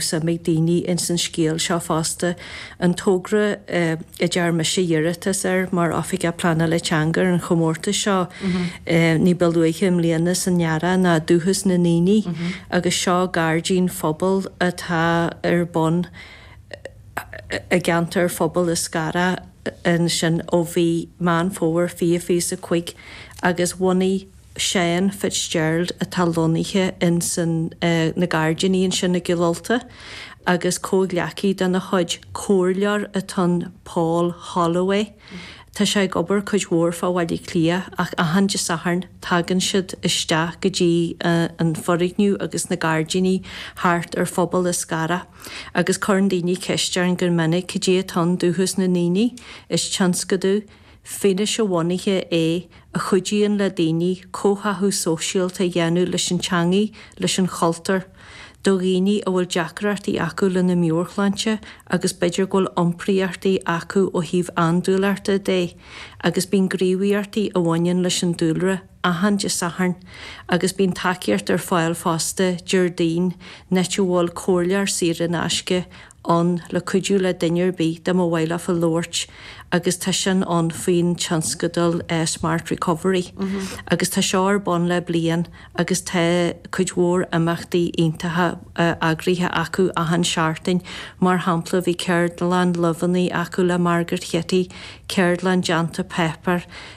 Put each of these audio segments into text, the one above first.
suim ag daoine ins an scéal seo fosta, an togra a dtearn mise iarratas air mar Oifigeach Pleanála Teanga ar an chomórtas seo ní ba luaithe i mbliana san earrach ná Dúchas na nDaoine agus seo gairdín phobail atá ar bun i gceantar Phobal Eascarrach ansin ó mhí Meán Fómhair 2025 agus bhunaigh Seán Fitzgerald atá lonnaithe ins na gairdíní ansin i gCill Ulta agus comhghleacaí dena chuid, comhairleoir atá ann, Paul Holloway. Tá sé ag obair cuid mhór fá Bhaile Átha Cliath ach achan Dé Sathairn tagann siad isteach go dtí an foirgneamh agus na gairdíní thart ar Phobal Eascarrach agus cuireann daoine ceist orainn go minic cad é atá in Dúchas na nDaoine. Is tionscadal. fianaise-bhunaithe é a chuidíonn le daoine comhtháthú sóisialta a dhéanamh leis an teangaidh, leis an chultúr, do dhaoine a bhfuil deacrachtaí acu lena meabhairshláinte agus b'fhéidir go bhfuil iompraíochtaí acu ó thaobh andúileachta de agus bíonn gníomhaíochtaí a bhaineann leis an dúlra. achan Dé Sathairn agus bíonn tacaíocht ar fáil fosta Déardaoin an áit a bhfuil comhairleoir saor in aisce ann le cuidiú le duine ar bith dá mba mhaith leofa labhairt agus tá sin ann faoin tionscadal Smart Recovery agus tá seo ar bun le bliain agus tá cuid mhór imeachtaí iontacha eagraithe acu achan seachtain mar shampla bhí ceardlann luibheanna acu le Margaret Chití, ceardlann déanta páipéar.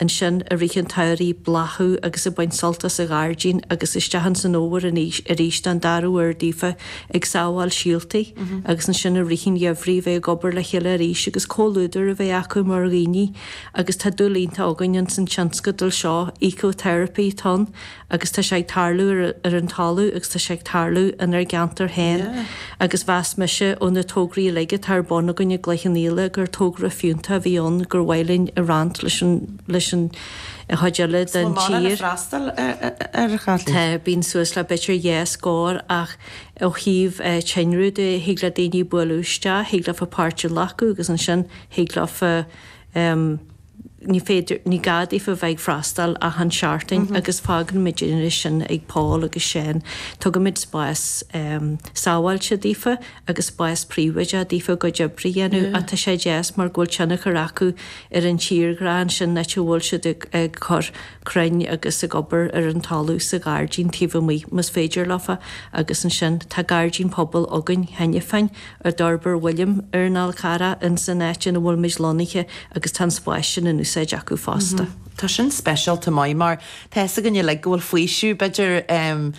ansin i rith an tsamhraidh bláthú agus ag baint sult as an ghairdín agus isteach ins an fhómhar anois arís don dara huair daofa ag sábháil síoltaí agus ansin i rith an gheimhridh a bheith ag obair le chéile arís agus comhluadar a bheith acu mar dhaoine agus tá dúil iontach againn ins an tionscadal seo Eco Therapy atá ann agus tá sé ag tarlú ar an talamh agus tá sé ag tarlú inár gceantar féin agus mheas mise ó na tograí uilig atá ar bun againn i gCloich Cheann Fhaola gur togra fiúntach a bhí ann gur mhaith linn a roinnt leis an chuid eile den tír. Tá, bíonn suas le b'fhéidir dhá scór ach ó thaobh tinreamh de thig le daoine bualadh isteach, thig leofa páirt a ghlacadh agus ansin thig leofa, Ní féidir, ní gá daofa a bheith ag freastal achan seachtain agus fágann muid é sin ag Paul agus Seán. Tugaimid spás sábháilte daofa agus spás príobháideach daofa a gcuid oibre a dhéanamh ach tá sé deas mar go bhfuil tionchar acu ar an tírdhreach ansin áit a bhfuil siad ag cur crainn agus ag obair ar an talamh sa ghairdín taobh amuigh más féidir leofa agus ansin tá gairdín pobail againn cheana féin a d'fhorbair William ar an Fhál Charrach ins an áit ina bhfuil muid lonnaithe agus tá an spás sin in úsáid acu fosta. Tá sin speisialta maith mar tá fhios againn uilig go bhfuil faoiseamh b'fhéidir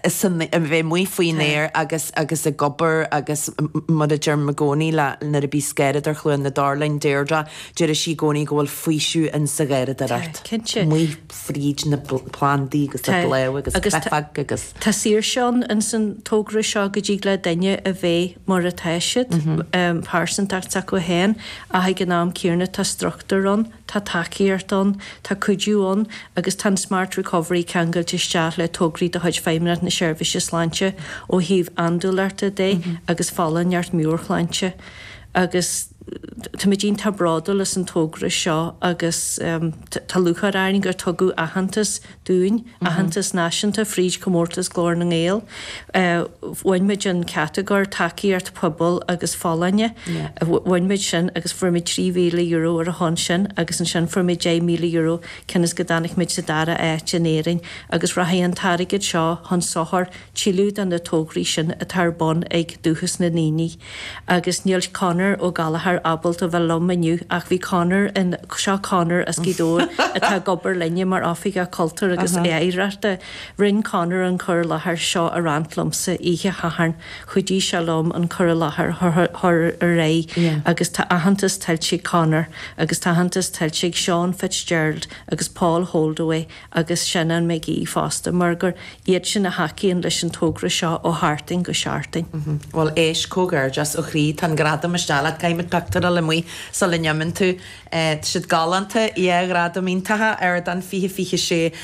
san a bheith amuigh faoin aer agus agus ag obair agus mar a deirim i gcónaí le nuair a bíos garraíodóir Chluain na dTor linn Deirdre deireadh sí i gcónaí go bhfuil faoiseamh ins a' gharraíodóireacht amuigh. fríd na plandaí agus na bláth agus cruithneacht agus. Tá saoirse ann ins an togra seo go dtig le duine a bheith mar atá siad, pearsantacht s'acu fhéin ach ag an am céarna tá struchtúr ann, tá tacaíocht ann, tá cuidiú ann agus tá an Smart Recovery ceangailte isteach le tograí de chuid Feidhmeannacht na Seirbhíse Sláinte ó thaobh andúileachta dé agus folláineacht mheabhairshláinte agus. Táimid iontach bródúil as an togra seo agus tá lúcháir orainn gur tugadh aitheantas dúinn, aitheantas náisiúnta, fríd Chomórtas Glór na nGael. Bhain muid an chatagóir Tacaíocht Pobail agus Folláine. Bhain muid sin agus fuair muid €3,000 ar a shon sin agus ansin fuair muid €10,000 cionn is go dtáinig muid sa dara áit in Éirinn agus rachaidh an t-airgead seo chun sochar tuilleadh de na tograí sin atá ar bun ag Dúchas na nDaoine. Agus níl Conor Ó Gallchóir ábalta bheith liom inniu ach bhí Conor in, seo Conor as Gaoth Dobhair atá ag obair linne mar Oifigeach Cultúir agus Oidhreachta, rinn Conor an cur i láthair seo a roinnt liomsa oíche Shathairn, chuidigh sé liom an cur i láthair chur ar aghaidh agus tá aitheantas tuillte ag Conor agus tá aitheantas tuillte ag Seán Fitzgerald agus Paul Holdaway agus Seanán Mac Aoidh fosta, mar gur iad sin a thacaíonn leis an togra seo ó sheachtain go seachtain. Bhuel, éist, comhghairdeas ó chroí, tá an gradam isteach leat, caithfidh muid pictiúr a fháil amuigh sula n-imíonn tú, siad galánta, yeah, gradaim iontacha, Ardán 2026.